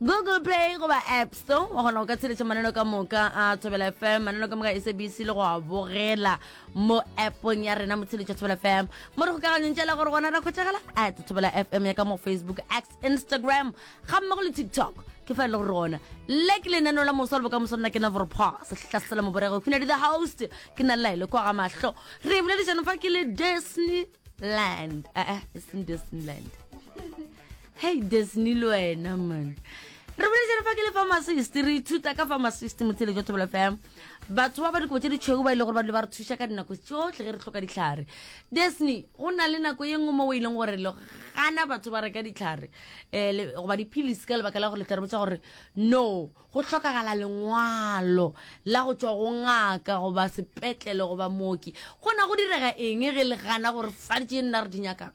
Google Play goba App Store wa kgona go ka tsheletša maneno ka moka a Thobela FM maneno ka moka SABC le go a bogela mo appong ya rena motsheletša Thobela FM mo re kgokaganyong tšela gore gona ra khwetšagala at Thobela FM ya ka mo Facebook X Instagram ga mmogo le TikTok ke fa e le gore gona le ke lenaneo la moso le bokamoso nna ke navorpa sehlasela moborego khunadi the host ke na laele kwa ga mahlo re boledišano fa ke le Disneyland ee eh, eh, e seng Disneyland hei disney le wena man re bolejane fa ke le pharmacist re ithuta ka pharmacist motshele jwa thobela fam batho ba ba dikobo tse ditšhweu ba e le gore ba dilo ba re thuša ka dinako tsotlhe ge re tlhoka ditlhare disney go na le nako ye nngwe mo o e leng gore gana batho ba reka ditlhare um goba diphilisi ka lebaka la gore letlare botsa gore no go tlhokagala lengwalo la go tswa go ngaka goba sepetlele goba mooki gona go direga eng ge le gana gore fa tše nna re di nyakang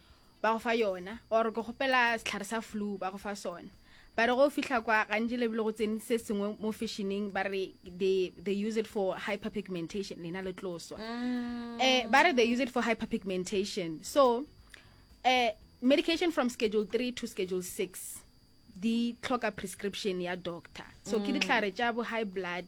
ba go fa yona or ke gopela setlhare sa flu ba go fa sona ba re go fihla kwa gantši lebile go tsene se sengwe mo fashining ba re they, they use it for hyperpigmentation lena le tloswa mm. eh, ba re they use it for hyperpigmentation so eh, medication from schedule 3 to schedule 6 di tlhoka prescription ya doctor so mm. ke ditlhare tša bo high blood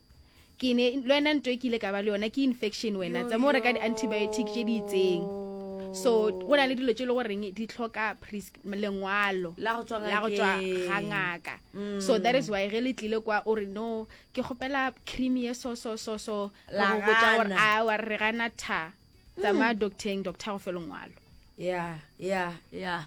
ke ne le wena nto e ke ile ka ba le yona ke infection wena tsa mo reka di-antibiotic tše di itseng so go na le dilo tše e le goreng di tlhoka lengwalo la go tswa ga ngaka mm. so that is why ge le tlile kwa o re no ke kgopela cream ye so so so so go botsa gore a wa re gana tha tsamaya hmm. docteng doctor go fe lengwalo ya ya ya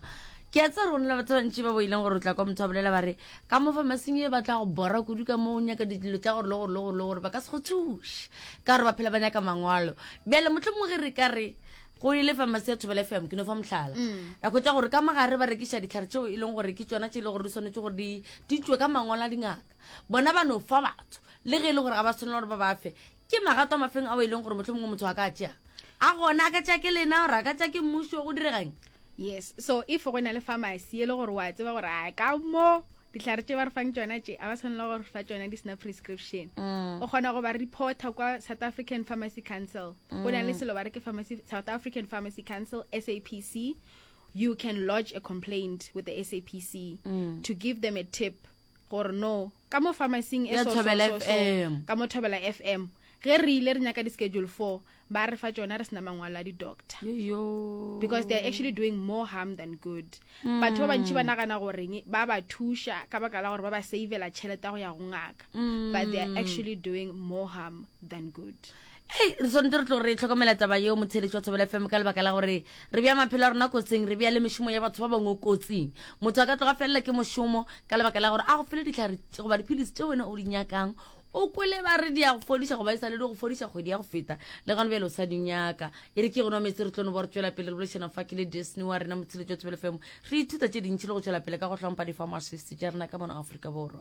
ke a tsa rona batho bantši ba boileng gore o tla kwa motho a bolela ba re ka mo famasing e batla go bora kudu ka mo o nyaka dilo tsa gore le gore le gore le gore ba ka se go thuše ka gore ba phela ba nyaka mangwalo bjale motlho mongwe re ka re go ile famasi ya thobela fm ke no fa motlhala mm. ra kgwetsa gore ka magare ba rekiša ditlhare tseo e leng gore ke tsona tse e le gore di tshwanetse gore di tswe ka mangwalo a dingaka bona ba no fa batho le ge e le gore ga ba tshwanela gore ba ba fe ke magato a mafeng ao e leng gore motlho mongwe motho a ka tšea a gona a ka tšea ke lena gore a ka tšea ke mmuso go diregeng yes so if go na le pharmacy e le gore wa tseba gore a ka mo ditlhare tse ba re fang tsona tse a ba tshwanela gore fa tsona di sena prescription mm. o kgona go ba reporta kwa south african pharmacy council go na le mm. selo ba re ke south african pharmacy council sapc you can lodge a complaint with the sapc mm. to give them a tip gore no ka mo pharmacing e Ya so- so- Thobela so- so, FM. ka mo thobela fm ge re ile re nyaka di-schedule four ba re fa tšona re sena mangwalo a di-doctor yoyo because they're actually doing more harm than good batho ba bantši ba nagana goreng ba ba thuša ka baka la gore ba ba savela tšhelete ya go ya go ngaka but they're actually doing more harm than good ei re tshwanetse re tlo re tlhokomela taba yeo motheeletši wa thobela fm ka lebaka la gore re bja maphelo a rona kotsing re bja le mešomo ya batho ba bangwe kotsing motho a ka tloga felela ke mošomo ka lebaka la gore a go fele ditlhare goba dipilisi tse wena o di nyakang o kwele ba re di ya go fodiša goba e sa le di go fodiša kgwedi ya go feta le gano bjale o sa di nyaka e re ke gona metse re tlono bo re tšwela pele re bolešana fa ke le disney wa rena motheeletši wa thobela fm re ithuta tše dintšhi le go tšwela pele ka go hlompha di-farmers fifty tša rena ka mono aforika borwa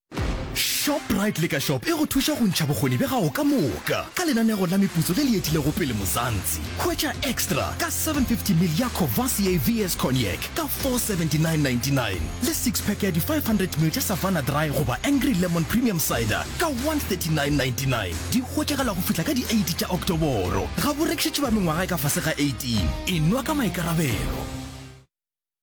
Shoprite le ka shop e go thuša go ntšha bokgoni bja gago ka moka ka lenanego la meputso le le etilego pele Mozantsi. Hwetša extra ka 750 mil ya Courvoisier VS Cognac ka 479.99 le six pack ya di 500 mil tša Savanna Dry goba Angry Lemon Premium Cider ka 139.99. Di hwetšagala go fihla ka di 8 tša Oktoboro. Ga bo rekišetšwe ba mengwaga e ka fase ga 18. E nwa ka maikarabelo.